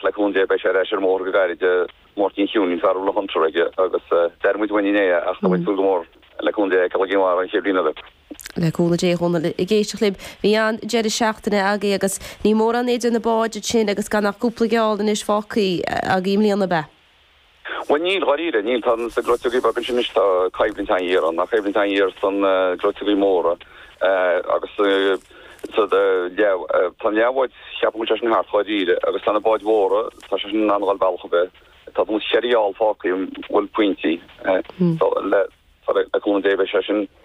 Le cúnamh Dé beidh sé ar ais ar an mbóthar go gairid. Máirtín Cheoinín, fear a bhfuil an Hunter aige agus d'airigh muid uainn inné ach tá muid ag súil go mór le cúnamh Dé é a fheiceáil i gCinn Mhara an chéad bhliain eile. Le cúnamh Dé, a Dhónaill, ag éisteacht libh. Bhí an-deireadh seachtaine againn agus ní mórán idir na báid sin agus gan ach cúpla geall anois fágtha againn i mbliana, ab ea? Bhuel, níl, dháiríre, níl. Tá sna gleoiteoga beaga sin anois, tá coimhlint an-ghéar ann, coimhlint an-ghéar sna gleoiteoga móra agus sa leath, tá an leathbhád, cheapfá go bhfuil sé sin thart, dháiríre, agus tá na báid mhóra, tá sé sin in ann a dhul bealach ar bith. Tá tuairim is cheithre gheall fágtha, bhuel, pointí, le cúnamh Dé beidh sé sin.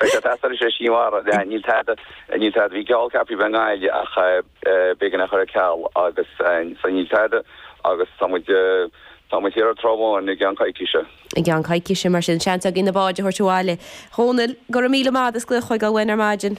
Beidh sé ag teastáil leis an sí mhara. Níl tada, níl tada. Bhí geall ceaptha a bheith i nGaillimh ach b'éigean é a chur ar ceal agus so níl tada agus tá muid, tá muid thiar ar an Trá Bháin i gceann coicíse. I gceann coicíse mar sin, seans againn na báid a thabhairt abhaile. A Dhónaill, go raibh míle maith agat as glaoch chugainn ar maidin.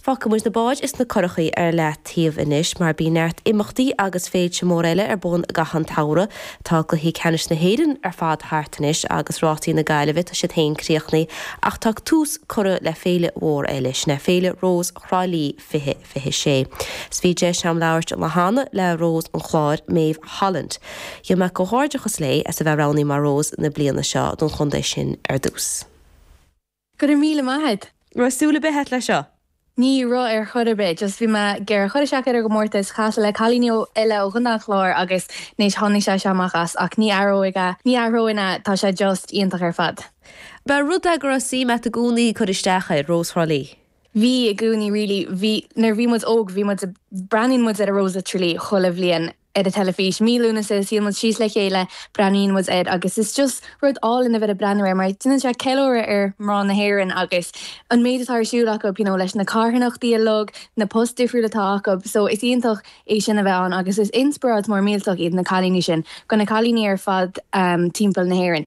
Fágfaidh muid na báid is na curachaí ar leataobh anois mar bíonn neart imeachtaí agus féilte móra eile ar bun i gcaitheamh an tsamhraidh. Tá cluichí ceannais na hÉireann ar fad thart anois agus rásaí na Gaillimhe, tá siad féin críochnaithe ach tá tús curtha le féile mhór eile, sin é Féile Rós Thrá Lí 2026. 'S bhí deis agam labhairt an lá cheana le Rós an Chláir, Méabh Holland. Rinne mé comhghairdeachas léi as a bheith roghnaithe mar Rós na bliana seo don chontae sin ar dtús. Go raibh míle maith agat. Raibh súil ar bith a't le seo? Ní raibh ar chor ar bith, just bhí mé ag iarraidh cur isteach ar an gcomórtas, casadh le cailíní eile ó Chontae an Chláir agus anois tháinig sé seo amach as ach ní athróinn é, ní athróinn é, tá sé just iontach ar fad. Ba rud é go raibh suim a't i gcónaí cur isteach air, Rós Thrá Lí? Bhí i gcónaí really, bhí, nuair bhí muid óg bhí muid, breathnaíonn muid ar Rós Thrá Lí chuile bhliain. ar an teilifís. Mí Lúnasa is shuíonn muid síos le chéile, breathnaíonn muid air agus is just rud álainn é a bheith ag breathnú air mar déanann sé ceiliúradh ar mná na hÉireann agus an méid atá ar siúl acu, you know, leis na carthanachtaí uilig, na post difriúil atá acu. So is iontach é sin a bheith ann agus is inspioráid mór millteach iad na cailíní sin go na cailíní ar fad timpeall na hÉireann.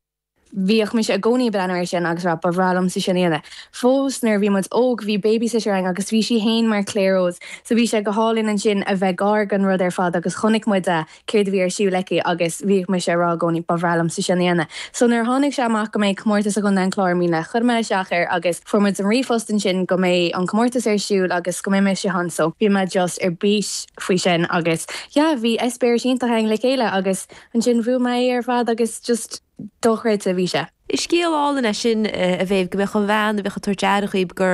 Bhíodh mise i gcónaí ag breathnú air sin agus ag rá, ba bhreá liomsa sin a dhéanamh. Fós nuair a bhí muid óg, bhí babysitter againn agus bhí sí fhéin mar Clare Rose so bhí sé go hálainn ansin a bheith gar don rud ar fad agus chonaic muid a, céard a bhí ar siúl aici agus bhíodh mise ag rá i gcónaí, ba bhreá liomsa sin a dhéanamh. So nuair a tháinig sé amach go mbeidh comórtas i gContae an Chláir i mbliana, chuir mé isteach air agus fuair muid an ríomhphost ansin go mbeidh an comórtas ar siúl agus go mbeidh mise ann so bhí mé just ar bís faoi sin agus yeah bhí eispéiris iontach againn le chéile agus. Ansin bhuaigh mé é ar fad agus just dochreidte a bhí sé. Is scéal álainn é sin, a Mhéabh, go mbeadh an bhean a bheadh ag tabhairt aire dhaoib go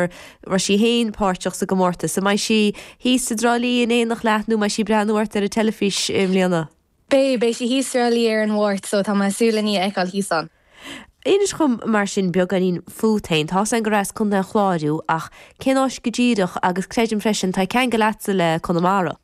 raibh sí féin páirteach sa gcomórtas. An mbeidh sí thíos i dTrá Lí in éineacht leat nó an mbeidh sí ag breathnú ort ar an teilifís i mbliana? Beidh, beidh sí thíos sa Trá Lí ar an Mháirt so tá mé ag súil lena a fheiceáil thíos ann. Inis dhom mar sin beagáinín fút féin. Tá 's a'm gur as Contae an Chláir thú ach cén áit go díreach agus creidim freisin tá ceangal agatsa le Conamara?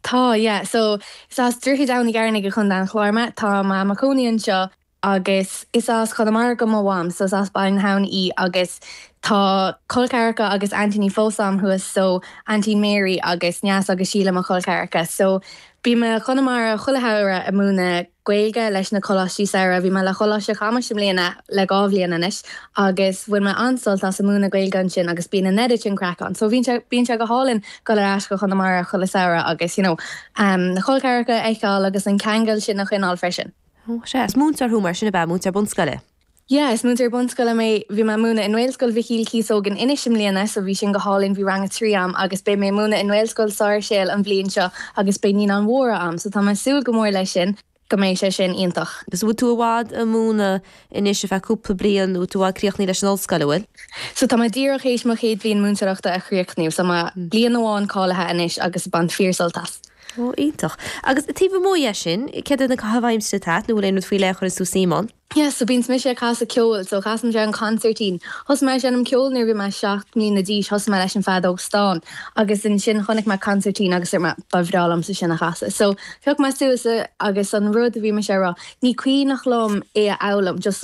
Tá, yeah. So, is as Droichead Abhann Ó gCearnaigh i gContae an Chláir mé. Tá mé i mo chónaí anseo agus is as Conamara do mo Mham, so is as Baile na hAbhann í agus tá col ceathracha agus aintíní fós a'm thuas, so Aintín Mary agus Neasa agus Síle mo chol ceathracha. So, bím i gConamara chuile shamhradh a' múineadh Gaeilge leis na coláistí samhraidh. Bhí mé le Coláiste Chamuis i mbliana le dhá bhliain anois agus bhain mé an-sult as a múineadh Gaeilge ansin agus bíonn an oiread craic ann so bhíonn sé bíonn sé go hálainn dul ar ais go Conamara chuile samhradh agus you know na col ceathracha a fheiceáil agus an ceangal sin a choinneáil freisin. Sea, is múinteoir thú mar sin ab ea, múinteoir bunscoile. Yeah, is múinteoir bunscoile mé. Bhí mé ag múineadh i nGaelscoil Mhichíl Cíosóg in Inis i mbliana so bhí sin go hálainn. Bhí Rang 3 a'm agus beidh mé ag múineadh i nGaelscoil Sáirséal an bhliain seo agus beidh Naíonáin Mhóra a'm so tá mé ag súil go mór leis sin, beidh sé sin iontach. So bhfuil tú i bhfad ag múineadh anois ar feadh cúpla bliain, bhfuil tú i bhfad críochnaithe leis an ollscoil, an bhfuil? So tá mé díreach théis mo chéad bhliain múinteoireachta a chríochnú so tá mé bliain amháin cáilithe anois agus bhain mé fíorshult as. Oh, iontach. Agus taobh amuigh dhe sin, céard iad na caitheamh aimsire atá a'at nó bhfuil aon rud faoi leith a chuireanns tú suim ann? Yes, so bíonns mise ag casadh ceoil, so casaimse an consairtín. Thosaigh mé ag seinm ceoil nuair a bhí mé seacht mbliana d'aois, thosaigh mé leis an bhfeadóg stáin agus ansin chonaic mé consairtín agus dúirt mé ba bhreá liomsa sin a chasadh. So thóg mé suas é agus an rud a bhí mise ag rá ní cuimhneach liom é a fhoghlaim just